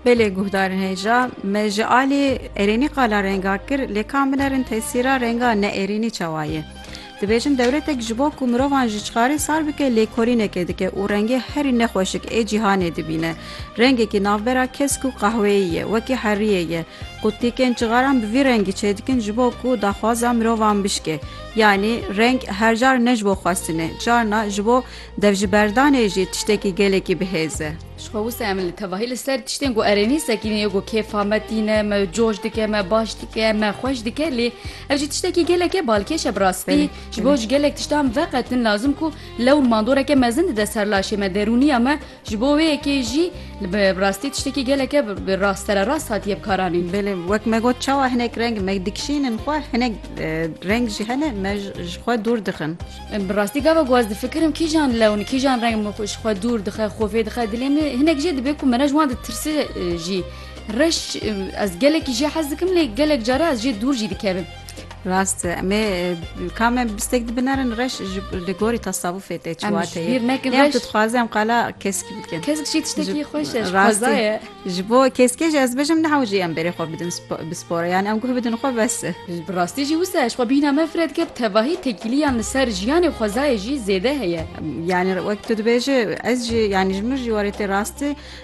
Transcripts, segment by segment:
Belê guhdarên hêja me ji alî erênî qala renga kir lê ka min erin tesîra renga ne erênî çawa ye. Dibêjin dewletek ji bo ku mirovan ji çixarê sar bike lêkolînekê dike û rengê herî nexweşik ê cîhanê dibîne. Rengekî navbera kesk û qehweyî ye wekî heriyê ye. Qutîkên çixaran bi vî rengî çêdikin ji bo ku daxwaza mirovan bişkê. Yanî reng her car ne ji bo xwestinê carna ji bo Dev ji berdanê jî tiştekî gelekî bihêz e. Ji xwe wisa em li tevahî li ser tiştên ku erênî sekînê ye ku kêfa me tîne, me coş dike, me baş dike, me xweş dike lê ev jî tiştekî gelekê balkêş e bi rastî ji bo ji gelek tiştan veqetin lazim ku lew û mandoreke mezin dide ser laşê me, derûniya me Ji bo wê yekê jî li bi rastî tiştekî geleke bi rast sererast hatiye bi kar anîn. Belê wek me got çawa hinek reng me dikişînin xwe hinek reng jî hene me ji xwe dûr dixin. Bi rastî gava ku ez difikirim kîjan lewn kîjan reng min ji xwe dûr dixe xwe fê dixe dilê min hinek jê dibe ku mene ji wan ditirse jî reş ez gelekî jê hez dikim lê gelek care ez jê dûr jî dikevim. Rast e. Em ê ka me bistek dibinerin reş ji li gorî tasavûfê tê Em çiwa ji tê. bîr nekin Yan reş. tu dixwaze em qala keskî bikin. Kesk jî tiştekî Ji- xweş e, ji rastî. xweza ye. Ji bo keskê jî ez bijim neha jî em berê xwe bidin spo- bi spora yan em guh bidin xwe bes e. Bi rastî jî wisa ye, ji xwe bîna me fire dike bi tevahî tekîliyan li ser jiyanê xwezayê jî zêde heye. Yani wek tu dibêje ez jî yani ji min jî warê tê rastî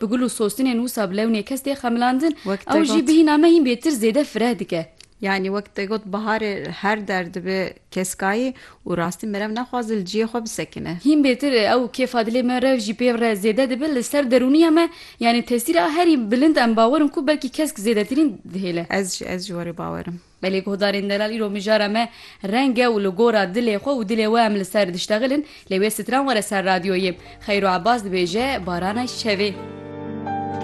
Bi gul û sostinên wisa bi lewnê kes tê xemilandin, Wek te ew jî got. bi hîna me hîn bêtir zêde fireh dike. Yanî wek te got biharê her der dibe keskayî û rastî merev naxwaze li ciyê xwe bisekine. Hîn bêtir ew kêfa dilê me rev jî pê re zêde dibe li ser derûniya me, yanî tesîra herî bilind em bawer in ku belkî kesk zêdetirîn dihêle. Ez jî, ez jî werî bawer im. Belê guhdarên delal îro mijara me reng e û li gora dilê xwe û dilê we em li ser diştexilin, lê wê stran were ser radyoyê. Xeyro Ebas dibêje, Barana şevê.